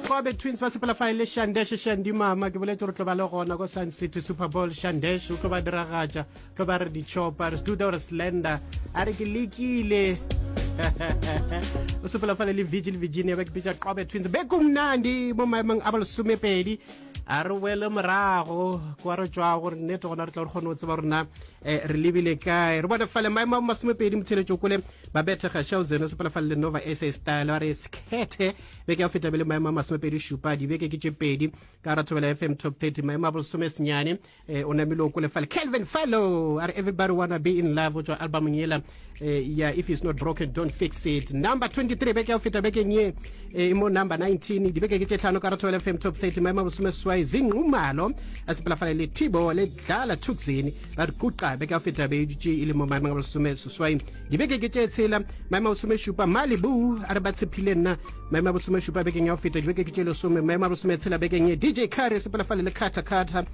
kobe twins ba sepela fa e le shandeshe shandimama ke boletse gore tlo ba le gona ko sun city super bowl shandeshe o tlo ba diragatša tlo ba re dichopa re seduda gore slender a re ke lekile o sepela fa le le vigil virginia ba ke pitsa qobe twins be kumnandi mo maemong a bolesomepedi a re wele morago kwa re tswa gore nnete gona re tla re kgone go tseba rona um re lebile kae re bone fale maemo a masomepedi motheletso kole Babette Gashauzen o sepela fa le Nova SA Style a re sekhethe beke ya go feta be le maemo a masomepedi šupa dibeke ke tše pedi ka ra thobela FM Top 30 maemo a bolesome senyane eh, o namile o kole fale Calvin Fallow a re everybody wanna be in love go tswa albumong yela eh, ya if it's not broken don't fix it number 23 beke ya go feta bekeng ye eh, e mo number 19 dibeke ke tše tlhano ka ra thobela FM Top 30 maemo a bolesome seswai zinqumalo a sepela fale le Tibo le tlala tuxin ba re quqa beke ya feta be dutše e le mo maemong a bolesome seswai dibeke ke tše tshela maemo a bolesome šupa malibu a re ba tshephile nna maemo a bolesome šupa bekeng ya go feta dibeke ke tše lesome maemo a bolesome tshela bekeng ye dj carry sepela fale le khatha khatha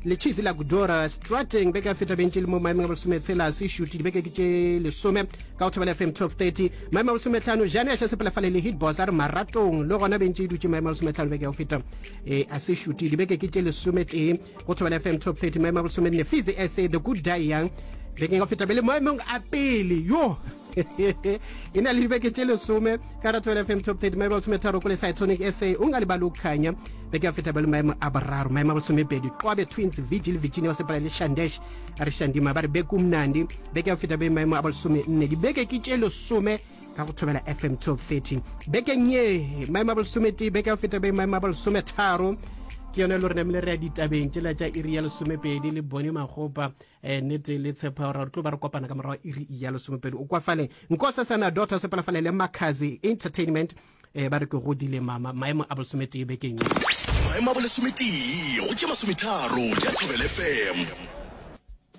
le cheese la kudora strateng beke ya feta bentše le mo maemong a bolesome tshela se shuti dibeke ke tše lesome ka go thobela fm top 30 maemo a bolesome tlhano jane a sepela fale le hitbos a re maratong le gona bentše e dutše maemo a bolesome tlhano beke ya go feta e a se shuti dibeke ke tše lesome tee go thobela fm top 30 maemo a bolesome nne fitse sa the good die young bekeng ka feta bele maemong a pele yo e na le dibeke tše lesome ka ratho ya fm top 30 maemo a bolesome tharo ko le cytonic sa o nga lebale o kganya beke ya feta bele maemo a boraro maemo a bolesome pedi qobe twins vigil virginia wa sepala le shandesh a re shandima ba re beke umnandi beke ya feta be maemo a bolesome nne dibeke ke tše lesome ka go thobela fm 1213 bekeng ye maemo a bolesomete beke ya go feta be maemo a bolesometharo ke yone lo re namile re ya ditabeng tsela tša iri ya lesomepedi le bone magopa um nete le tshepa gore re tlo ba re kopana ka morago iri ya lesomepedi o kwafale nkosa sana dota sepalafale le macazi entertainment um ba re ke godile mama maemo a bolesomete bekeng maemo a bolesometee go tše masometharo ja thobel fm